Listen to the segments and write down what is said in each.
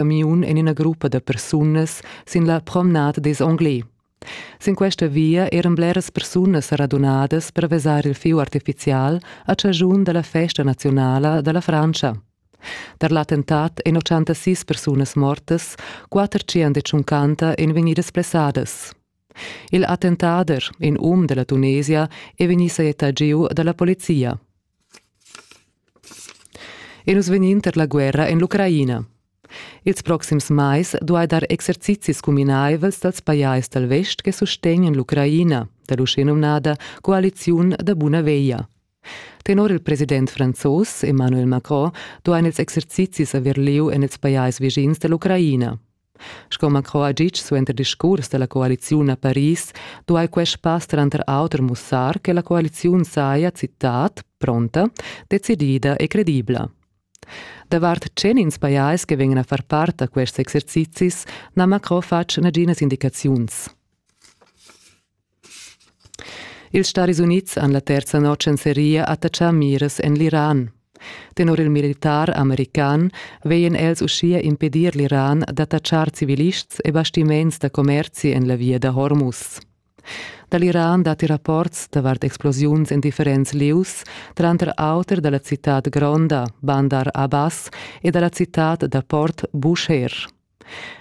camiun en ina gruppa da persunas sin la promenade des Anglais. Sin questa via eran bleras persunas radunadas per vesar il fieu artificial a chagiun dalla festa nazionala dalla Francia. Tar l'attentat ein 86 persunas mortas, quater tschient ein vegnidas plessadas. Il attentader, in um della Tunesia, è vegnì sajettà giu dalla polizia. E nus vegnin tar la guerra en l'Ucraina. Ils proxims mais duai dar exercizis cuminaivels dals pajais dal vest che sustegnan l'Ucraina, da l'uschenumnada coaliziun da buna veglia. Tenor il president franzos Emmanuel Macron duain ils exercizis avair lieu en ils pajais vischins da l'Ucraina. Sco Macron ha ditg suenter discurs da la coaliziun a Paris, duai quest pass tranter auter mussar che la coaliziun saja, citat, pronta, decidida e credibla. Davart tschenins pajais che vegnan a far part da quests exercizis n'ha Macron fatg naginas indicaziuns. Ils Staris Unids han la terza notg en seria attatschà miras en l'Iran. Tenor il militar american veien els uschia impedir l'Iran d'attatschar civilists e bastiments da commerzi en la via da Hormuz. Da l'Iran datti rapports davart explosiuns en differents lieus, tranter auter da la citad gronda, Bandar Abbas, e da la citad da port Bushehr.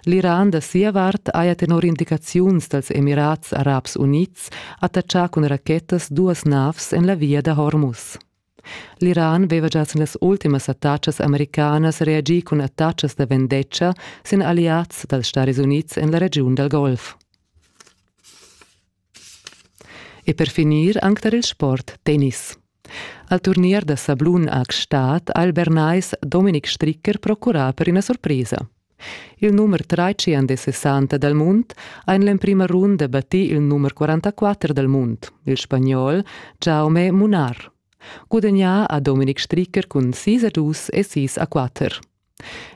L'Iran da sia vart haja tenor indicaziuns dals Emirats Arabs Unids attatschà cun rachetas duas navs en la via da Hormuz. L'Iran veva già sin las ultimas attacas americanas reagì cun attacas da vendetta sin alliads dals Stadis Unids en la regiun dal Golf. E per finir anc tar il sport tennis. Al turnier da sablun a Gstaad ha il Bernais Dominik Stricker procurà per ina surpresa. Il numer 63 dal mund ha en l'emprima runda battì il numer 44 dal mund, il spagnol Jaume Munar. Gudagnà ha Dominik Stricker cun 6 a 2 e 6 a 4.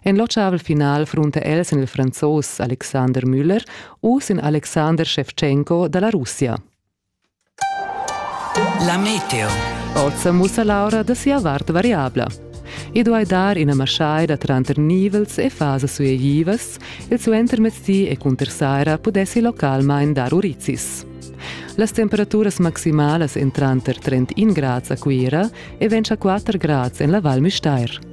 En l'otschavel final frunta els en il franzos Alexander Müller u sin Alexander Shevchenko da la Russia. La meteo. Oz mussa l'aura da sia vart variabla. I duai dar ina maschaida tranter nivels e fasas suegivas, il suentermezdi e cunter saira pudessi localmain dar urizis. Las temperaturas maximalas èn tranter 31 grads a Cuira e 24 grads en la Val Müstair.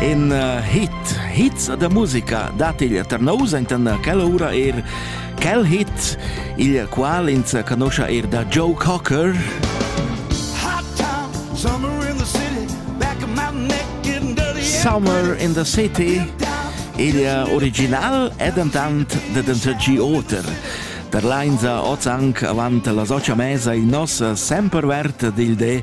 in uh, hit, hit da musica dat il Tarnous enten quella ura er quel hit, il qual ins conosce er da Joe Cocker. Summer in the City, il original è dentant de dentergi oter. Der Leinsa oz anc avant la socia mesa in nos sempervert dil de